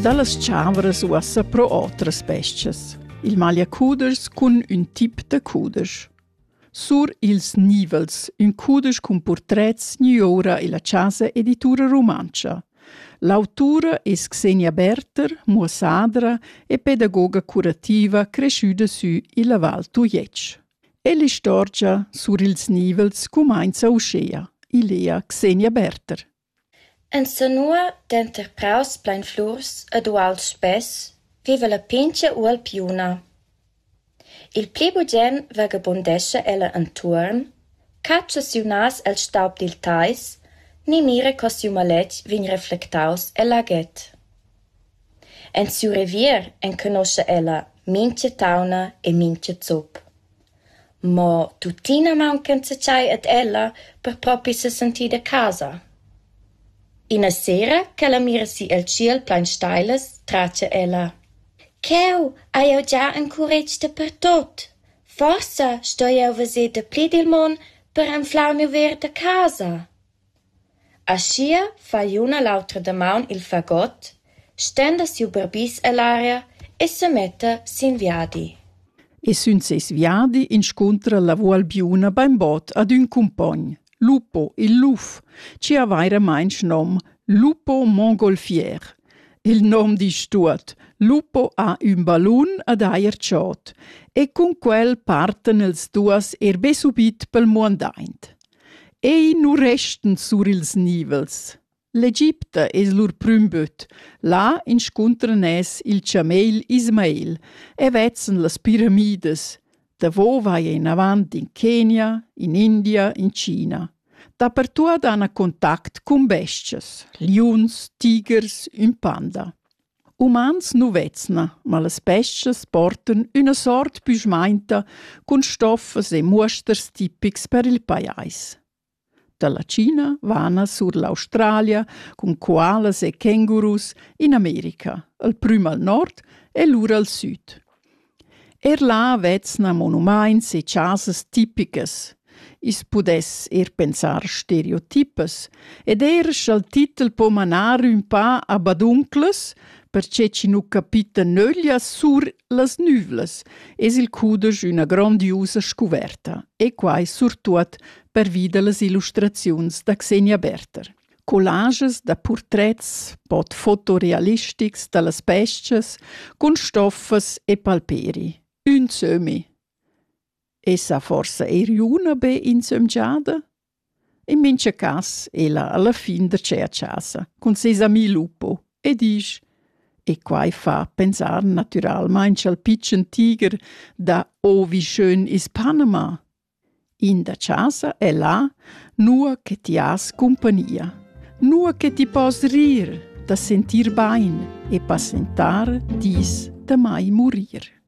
Dallas tscharveras uossa pro otras bes-chas. Il magliacuders cun ün tip da cudesch. Sur ils nivels, ün cudesch cun purtrets niura illa Casa Editura Rumantscha. L'autura es Xenia Berter, muossadra e pedagoga curativa cresciuda sü illa Val Tujetsch. E l'istorgia sur ils nivels cumainza uschea, ilea Xenia Berter. Insanua, denter praus plein flurs ed uals spess, viva la pintga ualpiuna. Il pli bugen vagabundescha ella entuorn, catscha siu nas el staub dil teis ni mira co siu maletg vegn reflectaus el aget. En siu revier enconoscha ella mintga tauna e mintga zup. Mo tuttina mauncanza tschei ad ella per propi sesentir da casa. Ina sera ch'ella mira si el tschiel plein steilas, tratga ella: Cheu hai jeu gia encuretg dapertut. Forsa sto jeu veser dapli dil mon per anflar miu ver da casa. Aschia fa l'un a l'autra damaun il fagot, stenda siu barbis ell'aria e semetta sin viadi. E sün seis viadi inscuntra la Vualbiuna bainbod ad ün cumpogn, Lupo il luf, chi ha vairamainch nom Lupo Mongolfier. Il nom disch tuot: Lupo ha ün ballun ad eir dschot e cun quel partan els duos er be subit pel muandaint. Ei nu restan sur ils nivels. L'Egipta es lur prüm böt. Là inscuntran es il chameil Ismail e vezzen las piramidas. Davo vai inavant in Kenia, in India, in China. Dapertuot han contact cun bestias, liuns, tigers, ün panda. Umans nu vezna, ma las bes-chas portan üna sort büschmainta cun stoffas e muosters tipics per il pajais. Da la China vana sur l'Australia cun koalas e kängurus in America, al prüm al nord e lura al süd. Er là vezna monumaints e chasas tipicas. I's pudess eir pensar stereotipas ed eir scha'l titel po manar ün pa a badunclas, perche chi nu capita nöglia sur las nüvlas, es il cudesch üna grondiusa scuverta e quai surtuot pervi da las illustraziuns da Xenia Berther. Collages da purtrets bod fotorealistics da las bes-chas cun stoffas e palperi, ün sömmi. Esa forsa eir üna be insömgiada? In mincha cas ella alla fin da cher chasa cun seis ami Lupo e disch: «E quai fa pensar natüralmaing cha'l pitschen tiger da «Oh, wie schön ist Panama!» In da chasa è là, nua che ti has cumpagnia, nua che ti pos rir da sentir bain e passentar dis damai murir.